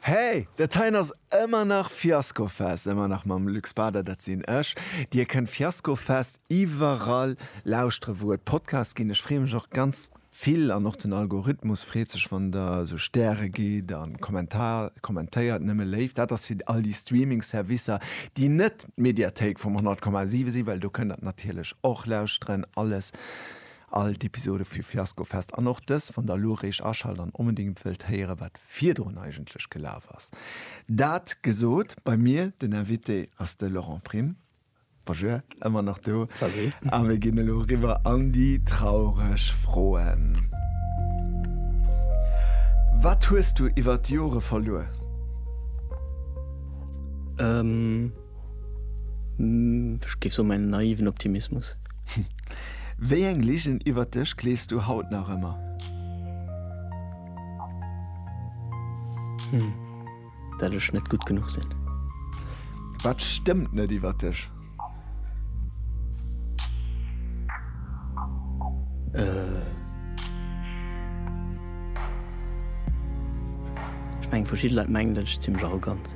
Hey, dat heien ass ëmmer nach Fiasco Fest, ëmmer nach mam Luc Spader, dat sinn ech. Dir kënnt Fiasco Fest iwwerall lauschteren, wou et Podcasts ginn. Ech freeë mech och ganz vill an och den Algorithmus freet sech, wann der esou Stäre gitt a kommentéiert. Nëmme léif. Dat ass fir all déi Streaming Servicer, déi net d'Mediathéik vum 100,7 sinn, well do kënnt der natierlech och lauschteren. Alles. All d'Episode vu Fiasko Fest an och dës wann der elo réischt aschalt an onbedingt wëllt héieren wat virdrun eigentlech gelaf ass. Dat gesot, bei mir den Invité ass de Laurent Prim. Bonjour, ëmmer nach do. Salut. A mir ginn elo eriwwer an déi traureg Froen. Wat hues du iwwert d'Jore verluer? Ech géif soen, mäin naiven Optimismus. Wéi eng Ligen iwwert dech gleefs du haut nach ëmmer? Dat ech net gutt genuch sinn. Wat stëmmt net iwwert dech? Ech mengen, verschidde Leit mengen, datt ech zimmlech arrogant sinn.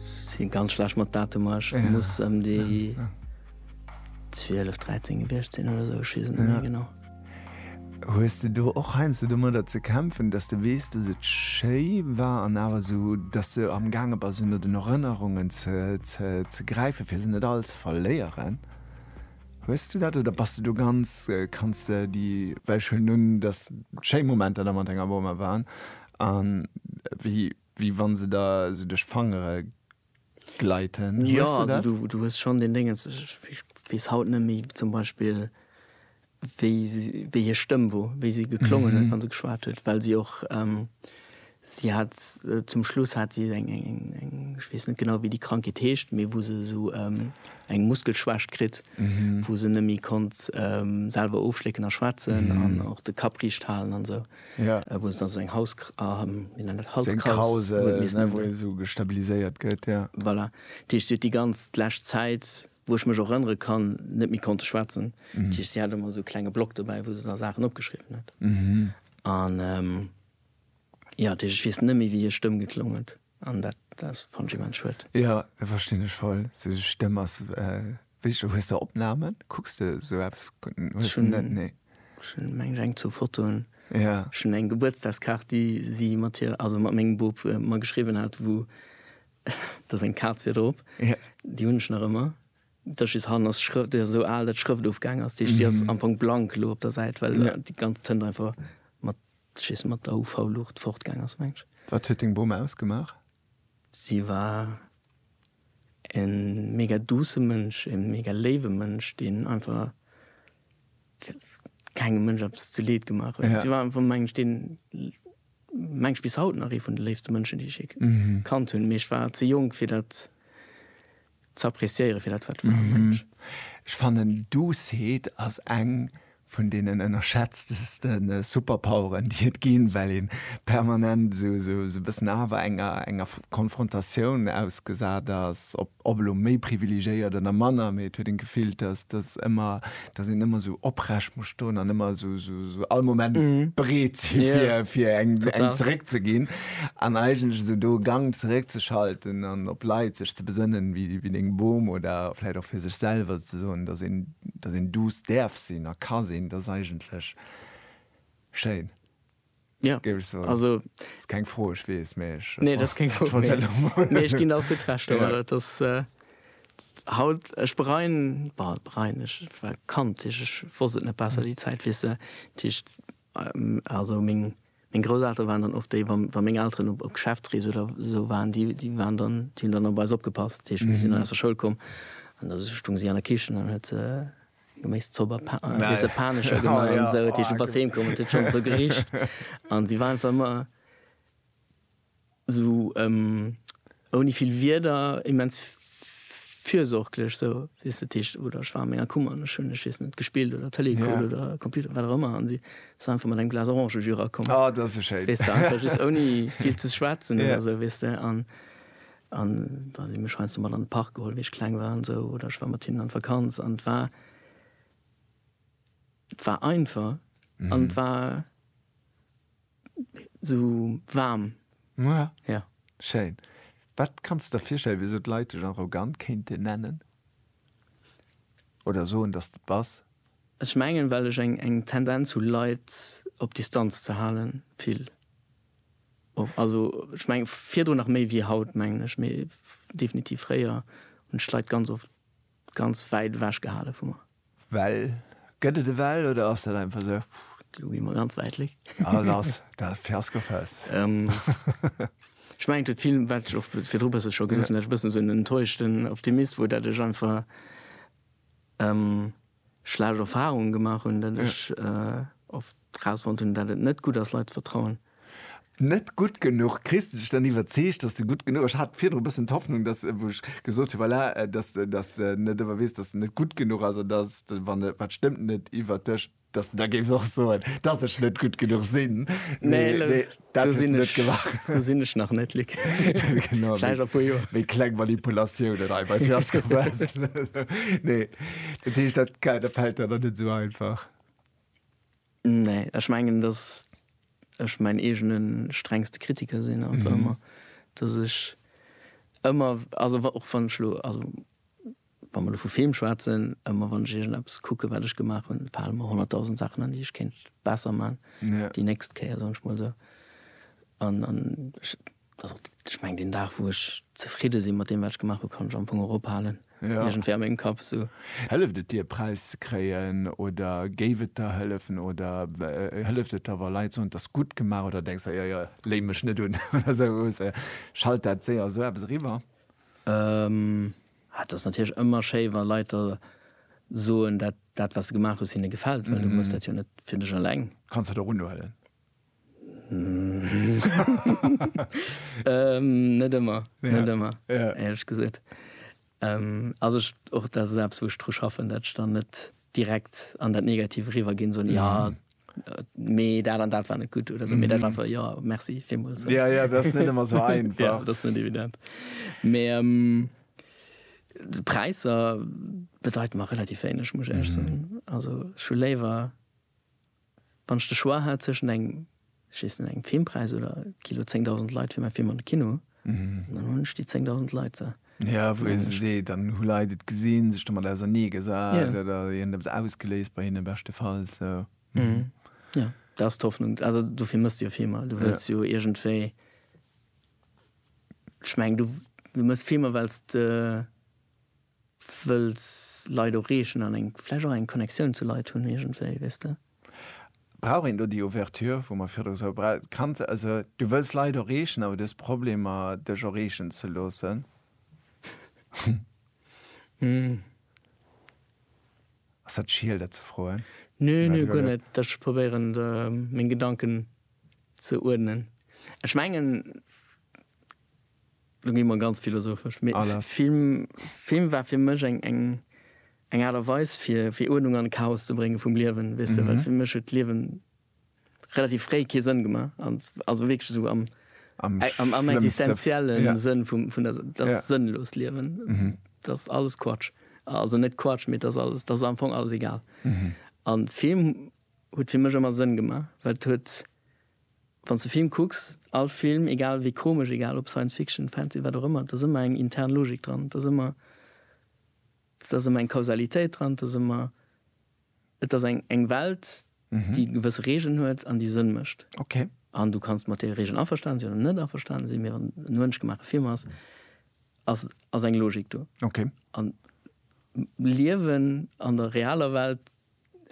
Sin ganz schlecht mat Datumer, ech muss em déi 12, 13 gewiecht sin oder esou, ech wees et net méi genau. Hues de do och heiansdo domadder ze kämpfen, dass de weess, dass et schéi war an awer esou, dass de am gaange bass ënner den Erënnerungen ze gräifen, fir se net all ze verléieren? Hues du dat oder bass de do ganz, kanns de déi, well ech huelen un, dass schéi Momenter da mat denger Boma waren an wéi, Wéi wann se der sou duerch d'Fangere gleiten. Jo, also du du hues schonn deen Déngens, ech weess haut net méi zum Beispill wéi si wéi hir Stëmm wor, wéi si geklongen huet wann se geschwat huet, well si och si hat zum Schluss hat si eng eng eng eng ech weess net genau wéi déi Krankheet heescht, mee wou se esou eng Muskelschwächt kritt, wou se net méi konnt selwer ofschlécken a schwätzen an och de Kapp riicht halen an esou. ja wou se da seng Haus wéi nennt dat Halskraus wou ee sou gestabiliséiert gëtt ja voilà dat heescht si huet déi ganz d'lescht Zäit wou ech mech och erënnere kann net méi konnte schwätzen dat heescht si hat ëmmer sou klenge Block dobäi wou se da Saachen opgeschriwwen huet an ja dat heescht ech weess net méi wéi hir Stëmm geklong huet. An dat ass fannech immens schued. Jo, dat verstinn ech voll. Sou eng Stëmm ass wéi, hues de Opnamen? Kucks de sou eppes? Hues de net? Nee. Ech hunn meng ech eng zou Fotoen. Jo. Ech hunn eng Gebuertsdagskaart déi si mat hir, also mat mengem Bop mer geschriwwen hat wou da seng Kaz wier drop. Jo. Déi hunn ech nach ëmmer. Da just hannen ass d'Schrëft, déi ass esou al dat d'Schrëft ofgaang ass. Déi ass am Fong blank elo op der Säit well déi ganz Tënt einfach mat Schiss mat der UV Luucht fortgaang ass mengs. Wat huet deng Bom ausgemaach? Si war en mega douce Mënsch, en mega léiwe Mënsch, deen einfach kengem Mënsch eppes zu Leed gemaach huet. Si war einfach mengs ech deen, mengs ech bis haut nach ee vun de léifste Mënschen déi ech jee kannt hunn, mee ech war ze jonk fir dat Ze appreciéieren fir dat wat war, mengen ech. Ech fannen Doucet ass eng vun deenen ënnerschätzteste Superpoweren déi et ginn, well ee permanent esou e bëssen awer enger Konfrontatioun ausgesat ass, ob elo méi privilegéiert oder manner, mee et huet een d'Gefill, dass ëmmer dass een ëmmer sou oprecht muss stoen an ëmmer sou, sou, sou all Moment bereet si Ja. fir, fir eng, eng Total. zeréck ze ginn an eigentlech esou do Gang zeréck ze schalten an op Leit sech ze besënnen, wéi, wéi deng Bom oder vläit och fir sech selwer ze soen, dass een, dass een duuss däerf sinn a ka sinn, dat ass eigentlech schéin. Ja, also ass keng Fro, ech weess, mee ech nee, dat ass keng Fro, mee ech ginn der absolut Recht, awer dat ass haut, ech bereien, bah, bereien, ech war Kand, ech wosst et net besser déi Zäit, weess de, dat heescht, also meng Grousseltere waren dann och déi, wa meng Elteren op Geschäftsrees oder esou waren, déi waren dann, déi hunn dann op eis opgepasst, dat heescht mir sinn dann aus der Schoul komm an da stoung si an der Kichen an huet se. Geméiss zo bei Pa, Nei. Weess de, Panescher gemaach an esou. Dat heescht, du bass heemkomm an et huet schonn zo gericht. An si war einfach ëmmer esou ouni vill Wierder immens fürsorglech esou, weess de. Dat heescht, oder ech war an menger Kummer an ech hunn, ech weess net, gespillt oder Tëlee gekuckt oder Computer, wat och ëmmer an si ass einfach mat engem Glas Orangejus erakomm. Oh, dat ass esou schéin. Weess de, einfach just ouni vill ze schwätzen oder esou, weess de. An An da si mech heiansdo mat an de Park geholl, wéi ech kleng war an esou, oder ech war mat hinnen an d'Vakanz an et war, et war einfach an et war esou waarm. Ja. Ja. Schéin. Wat kanns de der virstellen, wéi esou d'Leit dech arrogant kéinten nennen oder soen, dass de et bass? Ech mengen, well ech eng Tendenz hu Leit op Distanz ze halen, vill. Also ech mengen virdrun nach méi wéi haut mengen ech, mee definitiv fréier hunn ech d'Leit ganz oft ganz wäit ewech gehale vu mer. Well? Gëtt et e Well oder ass dat einfach sou? Lo gi mer ganz wäit weg. Ah lass dat Fiasko fest. Ech mengen et huet vill, wat ech och virdru e bësse scho gesot hunn, dat ech e bëssen esou en enttäuschten Optimist wor, dat ech einfach schlecht Erfahrungen gemaach hunn, datt ech oft rausfonnt hunn, datt et net gutt ass, Leit ze vertrauen. Net gutt genuch. Kriss de dech dann iwwerzeegt, datt de gutt genuch ass? Ech hat virdru e bëssen d'Hoffnung, datt, wou ech gesot hunn, voilà, datt, datt de net ëmmer weess, datt de net gutt genuch ass an datt de, wann e, wat stëmmt net iwwert dech, datt de da géifs och soen, datt ech net gutt genuch sinn. Mee, mee. Dat hues de net gemaach. Do sinn ech nach net, Luc. Genau. Vläicht a puer Joer. Wéi kleng Manipulatiounen hei bei Fiasco Fest. Nee. Dat heescht, dat Kader fält der dann net esou einfach? Nee. Ech mengen, datt ech mäin eegene strengste Kritiker sinn einfach ëmmer. Datt ech ëmmer, also och wann ech elo, also Wa mer elo vu Film schwätzen, ëmmer wann ech iergendeppes kucken, wat ech gemaach hunn, fale mer honnertdausend Saachen an, déi ech kéint besser man déi nächst Kéier, soen ech mol esou. An, an ech, also ech mengen, deen Dag, wou ech zefridde sinn mat deem, wat ech gemaach hunn, kann ech am Fong och ophalen, iergendwéi a mengem Kapp esou. Hëlleft et dir, e Präis ze kréien? Oder géif et der hëllefen? Oder hëlleft et der, wa Leit soen, 't ass gutt gemaach? Oder denks der, jo, jo, léi mech net un oder esou? Schallt dat séier esou eppes eriwwer? Et ass natierlech ëmmer schéi, wa Leit da soen, dat, dat wat s de gemaach hues, hinne gefält, well du muss dat jo net fir dech eleng. Kanns dat och unhuelen? Net ëmmer, net ëmmer, éierlech gesot. Also ech, och dat ass eppes, wou ech dru schaffen, dat ech dann net direkt an dat Negativ eriwwer ginn, soen, jo, mee dat an dat war net gutt oder sou, mee dat war einfach, jo, merci villmools. So. Ja, ja, dat ass net ëmmer sou einfach. ja, dat ass net evident. Mee ähm, de Präisser bedeiten mer relativ wéineg, muss ech ehrlech soen. Also ech hu léiwer, wann ech de Choix hätt zwëschen engem, ech weess net, engem Filmpreis oder Kilo 10.000 Leit fir mäi Film an de Kino, Jo, wou ee sech seet, dann hu Leit et gesinn, sech domat ausernee gesat oder hien huet eppes ausgeléist bei hinnen, beschtefalls. Jo, dat ass d'Hoffnung. Also dofir méchs de jo Filmer. Du wëlls jo iergendwéi, ech mengen, du méchs Filmer well s de. Wëlls Leit ureegen an eng, vläicht och eng Connectioun zu Leit hunn iergendwéi, weess de. Brauch een do déi Ouverture, wou mer virdru sou bra, kanns, also du wëlls Leit ureegen, awer du hues Problemer dech ureegen ze loossen? Ass dat schiel dat ze froen? Nö, nö, guer net. Ech probéieren de meng Gedanken ze uerdnen. Ech mengen. Lo gi mer ganz philosophesch. Mee Ah, lass. Film, Film war fir mech eng, eng, eng Aart a Weis fir, fir Uerdnung an Chaos ze brénge vum Liewen, weess de, well fir mech huet d'Liewen relativ fréi kee Sënn gemaach, an also wierklech esou am, Am am, am schlëmmste- existenzielle Ja. Sënn vum, vun der, dat Ja. sënnlost Liewen, dat ass alles Quatsch. Also net Quatsch, mee dat ass alles, dat ass am Fong alles egal. An Film huet fir mech ëmmer Sënn gemaach, well et huet, Wann s de Film kucks, all Film, egal wéi komesch, egal ob Science Fiction, Fantasy, wat och ëmmer, et ass ëmmer eng intern Logik dran, et ass ëmmer, et ass ëmmer eng Kausalitéit dran, et ass ëmmer, et ass eng, eng Welt, déi gewësse Regeln huet an déi Sënn mécht. Okay. An du kanns mat deene Regeln averstanen sinn oder net averstanen sinn, mee wann et e mënschgemaache Film ass, ass, ass eng Logik do. Okay. An d'Liewen an der realer Welt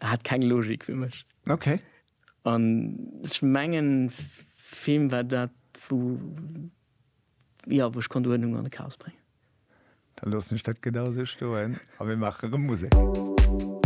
hat keng Logik fir mech. Okay. An ech mengen, Film war dat, wou, jo, wou ech konnt Uerdnung an de Chaos bréngen. Da loossen ech dat genau esou stoen a mir maache erëm Musek.